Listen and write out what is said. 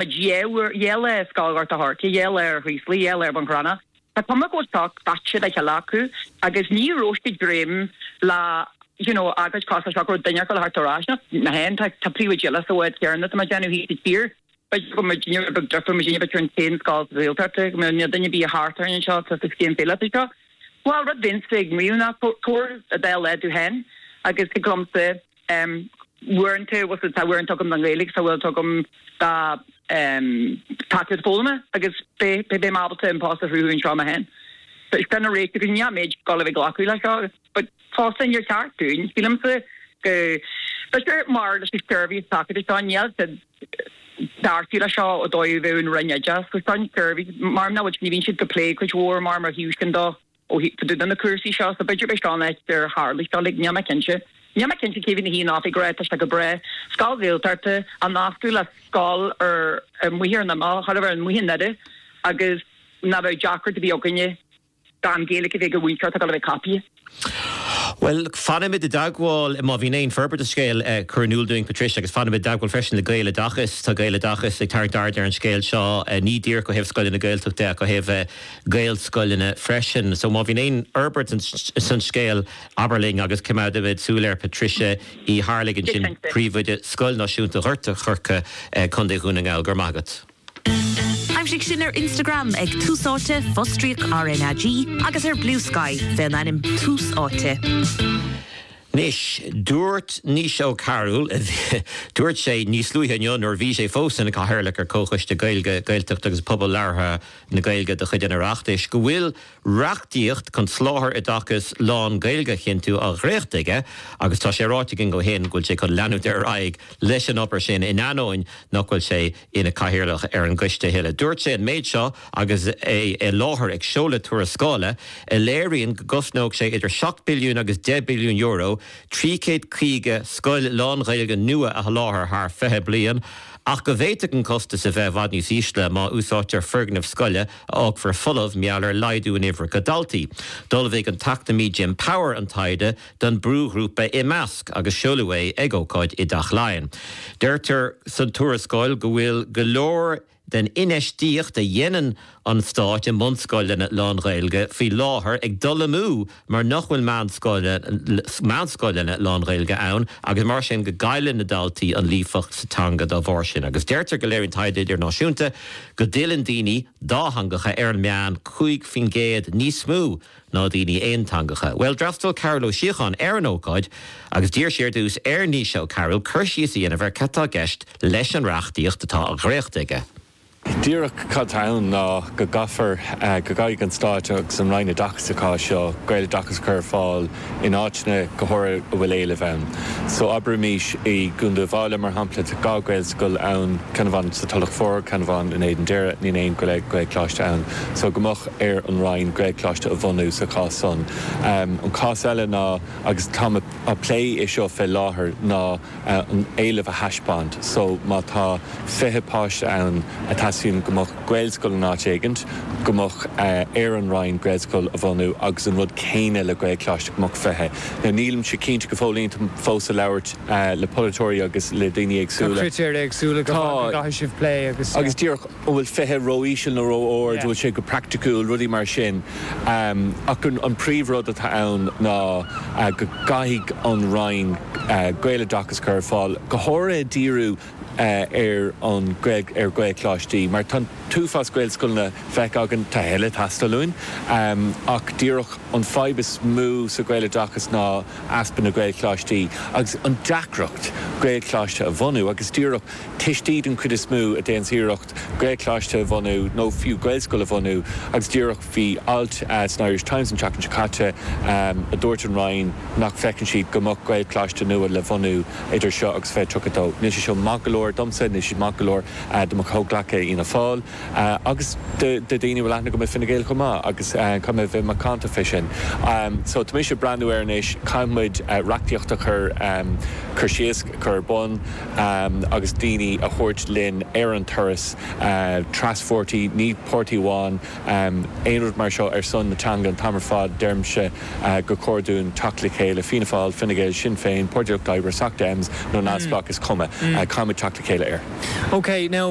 Ghéill ar Scoil Ghort a' Choirce, ghéill ar Chraoslaigh, ghéill ar Bun Cranncha. Tá Cormac Ó Soc daite le chéile acu agus ní rabhascadh greim le you know agat i gcás seo go raibh duine ar fáil thart ar ais ach na haon tá tá príomhoidí eile sa bhád céanna atá muid déanamh thíos sa tír. B'fhéidir go mbeidh duine ar bith deirfiúr muid inniu b'fhéidir an t-aon scoil sa saol thart ag mbeidh na duine bídh thart orainn anseo tá sa scéim féile atá seo. Bhuel rud a bhínse ag maíomh ná tabhair a dtoil led tú féin agus cad liomsa. Em, Uaireanta, bhfuil, tá uaireanta agam don Ghaeilge, tá uaireanta agam dá, em, tacaíocht foghlama agus beidh, beidh mé ábalta an post a chruthú anseo mé fhéin. So, is é an réiteach go níl muid ag gabháil a bheith ag glacadh leis seo, but fosta níor cheart dúinn, sílimse, go, tá sé mar leis an seirbhís tacaíochta seo, níl siad beartaithe leis seo ó dóigh a bheadh an Roinn Oideachais, so seo an suirbhé, mar mná, bhfuil, ní bhíonn siad ag plé cuid mhór mar mar thíos sin dó. Ó hí de na cúrsaí seo so b'fhéidir beidh sean áit ar tharla seo like níl mé cinnte níl mé cinnte cé mhí na hí an oifig ag rá tá sé go breá scoil Ghaeltachta á nascadh le scoil ar, amuigh ar an imeall thar a bheith ar an muiche nade agus ná beadh deacair do bhí againne gan Gaeilge a bheith ag múinteoir atá ag gabháil a bheith caipí. Bhuel look fanfaimid i dteagmháil is má bhíonn aon fhorbairt an scéal a chur in iúl dúinn Patricia agus fanfaimid i dteagmháil freisin le Gaeloideachas tá Gaeloideachas ag tarraingt aird ar an scéal seo ní díreach ó thaobh scoileanna Gaeltachta de ach ó thaobh gaelscoileanna freisin. So má bhíonn aon fhorbairt san scéal abair linn agus coimeádfaimid súil air, Patricia Uí Arlaigh ansin príomhoide Scoil Náisiúnta Ghort an Choirce, Contae Dhún na nGall. Go raibh maith agat. Aimsigh sinn ar Instagram ag Tús Áite, fostríoc RnaG, agus ar Bluesky fé an ainm Tús Áite. Anois, dúirt Naoise Ó Cearúil, dúirt sé níos luaithe inniu nuair a bhí sé fós ina Chathaoirleach ar Chomhchoiste Gaeilge, Gaeltachta agus Pobal Labhartha, na Gaeilge de chuid an Oireachtais go bhfuil reachtaíocht chun soláthar oideachais lán-Ghaeilge a chinntiú á dhréachtadh aige agus tá sé ráite aige ó shin go bhfuil sé chun leanúint ar aghaidh leis an obair sin in ainneoin nach bhfuil sé ina chathaoirleach ar an gcoiste a thuilleadh. Dúirt sé an méid seo agus é i láthair ag seoladh tuarascála a léiríonn go gcosnódh sé idir seacht billiún agus deich billiún euro trí chéad caoga scoil lán-Ghaeilge nua a sholáthar thar fiche bliain ach go bhféadfadh an costas a bheith i bhfad níos ísle má úsáidtear foirgneamh scoile a fhágfar folamh mar gheall ar laghdú in uimhreacha daltaí. D'ullmhaigh an t-eacnamaí Jim Power an taighde don brúghrúpa iMeasc agus seoladh é ag ócáid i dTeach Laighean. Deirtear sa tuarascáil go bhfuil go leor den infheistíocht a dhéanann an stáit i mbunscoileanna lán-Ghaeilge faoi láthair ag dul amú mar nach bhfuil meánscoileanna lán-Ghaeilge ann agus mar sin go gcailleann na daltaí an líofacht sa teanga dá bharr sin agus deirtear go léiríonn taighde idirnáisiúnta go dtuilleann daoine dátheangacha ar an meán 5 faoin gcéad níos mó ná daoine aonteangacha. Bhuel, d'fhreastail Cáthal Ó Síocháin ar an ócáid agus d'iarr sé ar dtús ar Naoise Ó Cearúil cur síos a dhéanamh ar cad atá i gceist leis an reachtaíocht atá á dhréachtadh aige. Díreach cad tá ann ná go gcaithfear, go gcaithfidh an Stát agus an Roinn Oideachais sa chás seo, Gaeloideachas a chur ar fáil in áiteanna go háirithe a bhfuil éileamh ann. So abraimís i gContae Uíbh Fhailí mar shampla tá dhá Ghaelscoil ann, ceann amháin sa Tulach Mhór, ceann amháin in Éadan Doire, níl aon Gaelcholáiste ann. So go mbeadh ar an Roinn Gaelcholáiste a bhunú sa chás san. An cás eile ná, agus táim a' plé é seo fé láthair, ná, an éileamh a thaispeáint. So má tá fiche páiste ann a teastaíonn go mbeadh Gaelscoil in áit éigint, go mbeadh ar an Roinn Gaelscoil a bhunú agus an rud céanna le Gaelcholáiste, go mbeadh fiche. Now nílimse cinnte go fóillín, táim fós ag labhairt le polaiteoirí agus le daoine Tá éagsúla. critéir éagsúla go gcaithfidh sibh plé agus. Agus díreach. an bhfuil 20 ró-íseal nó ró-ard, an bhfuil sé go praiticiúil, rudaí mar sin. Ach an príomhrud atá ann ná go gcaithfidh an Roinn Gaeloideachas a chur ar fáil go háirithe díriú ar an ar Ghaelcholáistí mar tá an t-uafás Gaelscoileanna feicthe againn, tá a thuilleadh ag teastáil uainn ach díreach an fhadhb is mó sa Ghaeloideachas ná easpa na Gaelcholáistí agus an deacracht Gaelcholáiste a bhunú agus díreach. Tuistí den chuid is mó a déanns iarracht Gaelcholáiste a bhunú nó fiú Gaelscoil a bhunú agus díreach bhí alt san Irish Times an tseachtain seo caite a dúirt an Roinn nach bhfeiceann siad go mbeadh Gaelcholáiste nua le bhunú idir seo agus 2032. Níl sé seo maith go leor domsa, níl sé maith go leor do mo chomhghleacaithe i bhFianna Fáil agus do daoine a bhfuil aithne agam i bhFine Gael chomh maith agus caithfidh mé a bheith macánta fé sin. So tá mise ag breathnú air anois, caithfidh muid reachtaíocht a chur síos, a chur ar bun, agus daoine a thabhairt linn ar an turas traspháirtí, ní páirtí amháin, aon rud mar seo ar son na teanga an t-am ar fad, deirimse gur chóir dúinn teacht le chéile, Fianna Fáil, Fine Gael, Sinn Féin, Páirtí an Lucht Oibre, Soc Dems nó Neamhspleách is cuma, caithfidh muid teacht le chéile ar. OK, now.